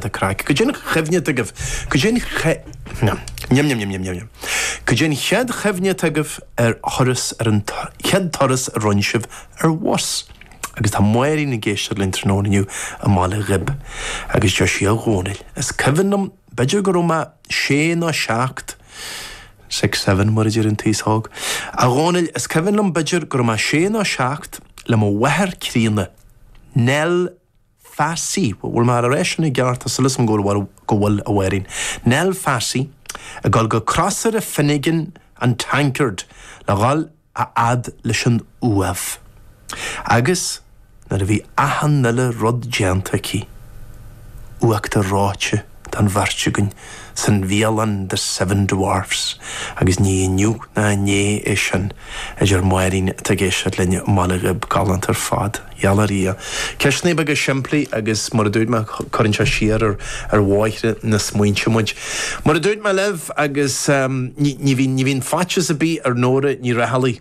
Tá craic. Cad é an chuimhne agaibh. Cad é an chéad chuimhne atá agaibh ar thuras, ar an chéad turas a rinne sibh ar bhus. Agus tá Máirín ag éisteacht linn tráthnóna inniu i mBaile Ghib. Agus deir sí, A Dhomhnaill, is cuimhin liom, b'fhéidir go raibh mé sé nó seacht, six, seven mar a deir an t-aos óg, A Dhomhnaill, is cuimhin liom, b'fhéidir go raibh mé sé nó seacht, le mo mháthair críonna, Nell, Phassy, bhfuil mé ag rá sin i gceart, tá súil agam go bhfuil, go bhfuil, a Mháirín. Nell Phassy, ag dul go Crosaire Finnegan an Tankard le dhul a fhad leis an Uaimh. Agus nuair a bhí achan uile rud déanta aici. Uachtar reoite. don bheirt againn san bhialann The Seven Dwarfs agus ní inniu ná inné é sin a deir Máirín atá ag éisteacht linn i mBaile Ghib galánta ar fad. Gheall ar Dhia. Ceisteanna beaga simplí agus mar a dúirt mé cuireann sé siar ar ar bhóithre na smaointe muid. Mar a dúirt mé libh agus ní bhíonn faitíos ar bith ar Nóra Ní Raghallaigh.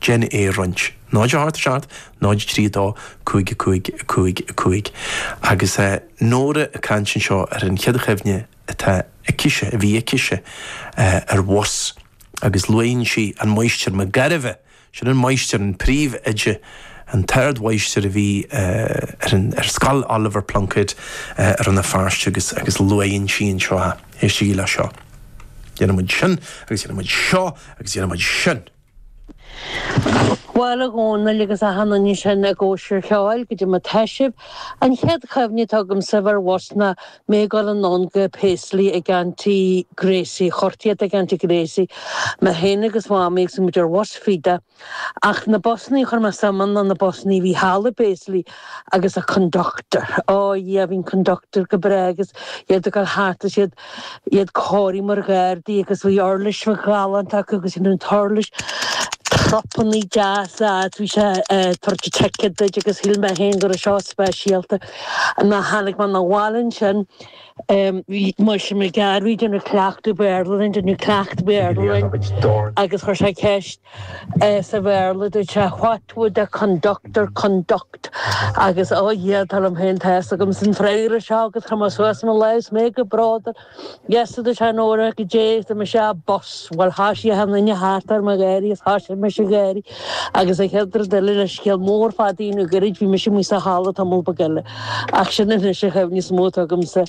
gan é a roinnt. 0 8 7 0 3 2 5 5 5 5 Agus Nóra ag caint anseo ar an chéad chuimhne atá aicise, a bhí aicise, ar bhus agus luaigheann sí an Máighistir Mac Gairbheith, sin an Máighistir, an Príomh Oide, an tArd Mháighistir a bhí ar an, ar scoil Oliver Plunkett i Rann na Feirste agus, agus luaigheann sí anseo, éistigí le seo. Dhéanadh muid sin agus dhéanadh muid seo agus dhéanadh muid sin. Bhuel, a Dhomhnaill, agus achan nduine ansin i gCóisir Cheoil, cad é mar atá sibh, an chéad chuimhne atá agamsa bheith ar bhus ná mé ag dul anonn go Paisley ag Aunty Gracie, cuartaíocht ag Aunty Gracie mé féin agus Mamaí agus bhí muid ar bhus Feda, ach na busannaí a chuir mé suim ann ná na busannaí a bhí thall i bPaisley agus an conductor, á, Dhia, bhí an conductor go breá agus iad ag dul thart agus iad iad cóirithe mar ghardaí agus bhí uirlis ghalánta acu agus sin an t-uirlis trupannaí deasa fhad bhí sé ag tabhairt ticket duit agus shíl mé féin go raibh seo speisialta nuair a tháinig mé na bhaile ansin bhí an Máighistir Mac Gairbheith ag déanamh cleachtadh Béarla linn ag déanamh cleachtadh Béarla linn agus chuir sé ceist Sa Bhéarla, dúirt sé What would a conductor conduct? Agus ó Dhia, dar liom féin tá a fhios agamsa an freagra seo agus chuir mé suas mo lámh is mé go bródúil. Yes, a dúirt sé, Nóra, cad é, dúirt mise a bus. Bhuel, thoisigh achan nduine thart orm a gháirí agus thoisigh mise a gháirí. Agus an chéad rud eile, leis an scéal mór fada a dhéanamh gairid, bhí mise amuigh sa halla tamall beag eile. Ach sin anois an chuimhne is mó atá agamsa.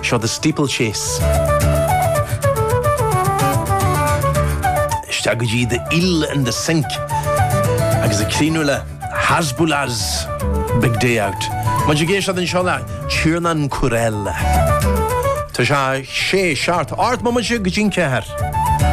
Seo The Steeplechase. Isteach go dtí The Eel in the Sink agus ag críochnú le Hasbulas Big Day Out. Muid ag éisteacht anseo le Tiernan Courell. Tá sé díreach ar dhá mhóimid go dtí an ceathair.